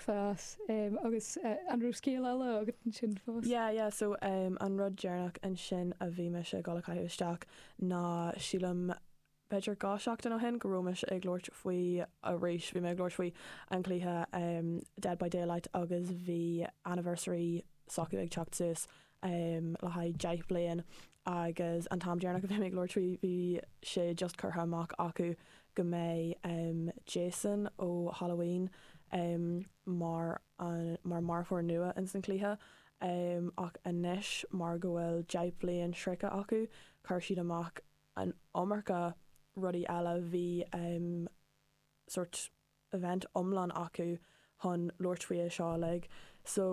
chás, agus an raibh scéal eile agat ansin fós? Yeah, yeah, so um an rud deireanach ansin a bhí mise ag dul a chaitheamh isteach ná sílim b'fhéidir dhá seachtain ó shin go raibh mise ag labhairt faoi arís, bhí mé ag labhairt faoin chluiche um Dead by Daylight agus bhí anniversary s'acu ag teacht suas. le haghaidh deich bhliain agus an t-am deireanach a bhí mé ag labhairt faoi bhí sé just curtha amach acu go mbeidh Jason ó Halloween mar mar marfóir nua ins an cluiche ach anois mar go bhfuil deich bliain sroichte acu cuir siad amach an iomarca rudaí eile bhí sort event iomlán acu chun labhairt faoi seo uilig so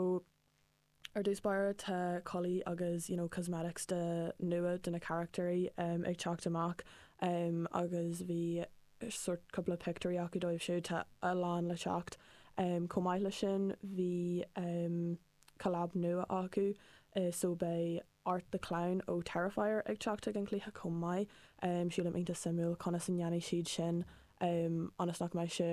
Ar dtús báire tá culaí agus you know cosmetics nua do na carachtair em ag teacht amach em agus bhí sórt cúpla pictiúirí acu dóibh so tá a lán le teacht. Em chomh maith le sin bhí em collab nua acu eh so beidh Art the Clown ó Terrifier ag teacht chuig an chluiche chomh maith em sílim iontach suimiúil conas a ndéanfaidh siad sin em ionas nach mbeidh sé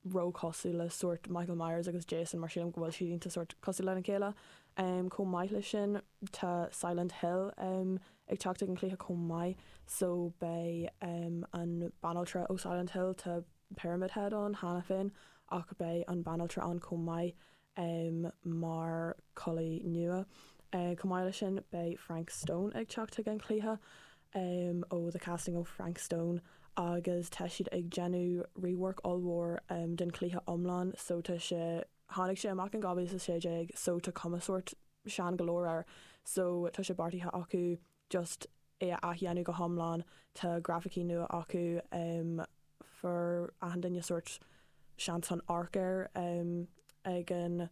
ró-chosúil le sórt Michael Myers agus Jason, mar sílim go bhfuil siad iontach sórt cosúil lena chéile. Chomh maith le sin, tá Silent Hill ag teacht chuig an chluiche chomh maith, so beidh an banaltra ó Silent Hill, tá Pyramid Head ann cheana féin, ach beidh an banaltra ann chomh maith. um mar culaí nua. um Chomh maith le sin, beidh Frank Stone ag teacht chuig an chluiche um ó The Casting of Frank Stone agus tá siad ag déanamh rework ollmhór um den chluiche iomlán so tá sé tháinig sé amach in 2016 so tá cuma sórt sean go leor air so tá sé beartaithe acu just é a athdhéanamh go hiomlán. Tá grafaicí nua acu, fuair achan duine sórt seans chun amharc air ag an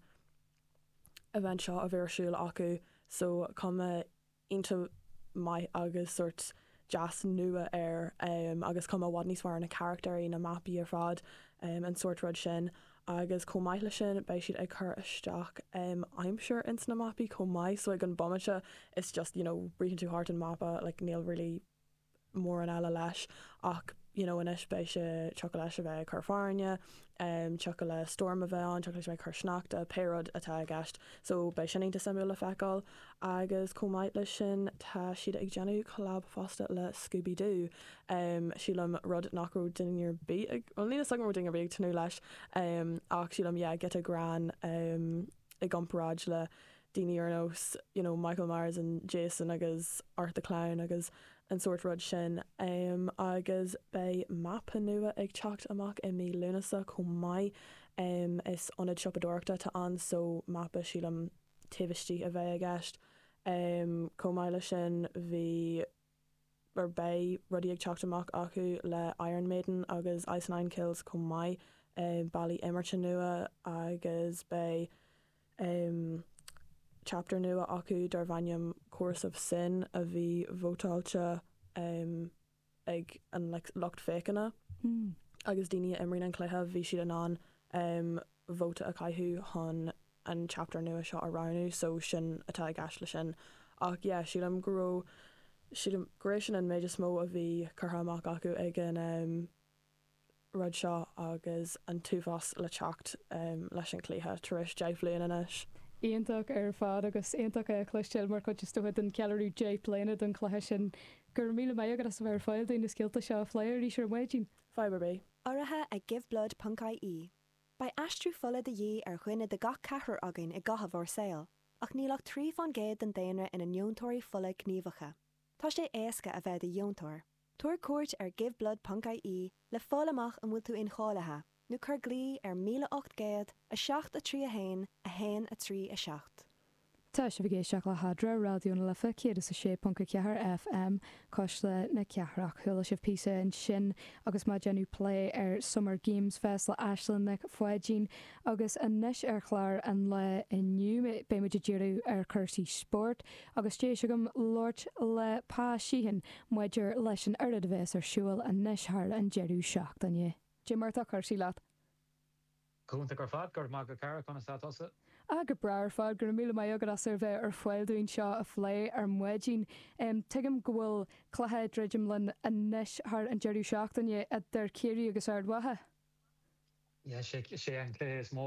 event seo a bhí ar siúl acu, so cuma iontach maith agus sórt deas nua air agus cuma i bhfad níos fearr ar na carachtair, na mapaí ar fad, an sórt rud sin. Agus chomh maith le sin, beidh siad ag cur isteach em, aimsir ins na mapaí chomh maith, so ag an bomaite it's just, you know, ritheann tú thart an mapa, like níl really mórán eile leis ach, you know, anois beidh sé, tiocfadh leis a bheith ag cur fearthainne, em tiocfadh le stoirm a bheith ann, tiocfadh leis a bheith ag cur sneachta, pé rud atá i gceist, so beidh sin iontach suimiúil le feiceáil. Agus chomh maith le sin, tá siad ag déanamh collab fosta le Scooby Doo, em sílim rud nach raibh duine ar bith ag bhuel níl 'fhios agam raibh duine ar bith ag tnúth leis em ach sílim yeah giota grinn em i gcomparáid le daoine ar nós you know Michael Myers and Jason agus Art the Clown agus an sórt rud sin em agus beidh mapa nua ag teacht amach i mí Lúnasa chomh maith em is ionad siopadóireachta atá ann so mapa sílim taobh istigh a bheidh i gceist em chomh maith leis sin bhí beidh rudaí ag teacht amach acu le Iron Maiden agus Ice Nine Kills chomh maith, bealaí imeartha nua agus beidh chapter nua acu darb ainm Chorus of Sin a bhí vótáilte ag an lucht féachana agus daoine a imríonn an cluiche bhí siad in ann vóta a chaitheamh chun an chapter nua seo a roghnú so sin atá i gceist le sin ach yeah sílim go raibh sílim go raibh sin an méid is mó a bhí curtha amach acu ag an em rud seo agus an t-uafás le teacht em leis an gcluiche tar éis deich mbliana anois. Iontach ar fad agus iontach é a chloisteáil mar chuid is dócha den cheiliúradh deich bliana don chluiche sin go raibh míle maith agat as a bheith ar fáil dúinn na scéalta seo a phlé arís ar maidin. Fadhb ar bith. Urraithe ag Give Blood ponc-IE. Beidh aistriú fola de dhíth ar dhuine as gach ceathrar againn i gcaitheamh ár saol, ach níl ach trí fán gcéad den daonra ina ndeontóirí fola gníomhacha. Tá sé éasca a bheith i do dheontóir. Tabhair cuairt ar giveblood ponc IE le fáil amach an bhfuil tú incháilithe, nó cuir glao ar 1800 7 3 1 1 3 7. Tá sibh ag éisteacht le hAdhmhaidin Raidió na Life 106.4 FM, cuisle na cathrach. Chuala sibh píosa ansin agus mé ag déanamh plé ar Summer Game Fest le Aisling Nic Pháidín. Agus anois ar chlár an lae inniu beidh muid ag díriú ar chúrsaí spóirt agus deis agam labhairt le Pa Sheehan maidir leis an oiread a bheas ar siúl anois thar an deireadh seachtaine. Cad é mar atá cúrsaí leat. Go hiontach ar fad go raibh maith agat a chara conas tá tusa? Ah, go breá ar fad. Go raibh míle maith agat as a bheith ar fáil dúinn seo a phlé ar maidin. Em, tuigim go bhfuil cluiche ag druidim linn anois thar an deireadh seachtaine idir Ciarraí agus Ard Mhacha. Yeah, sé, sé an cluiche is mó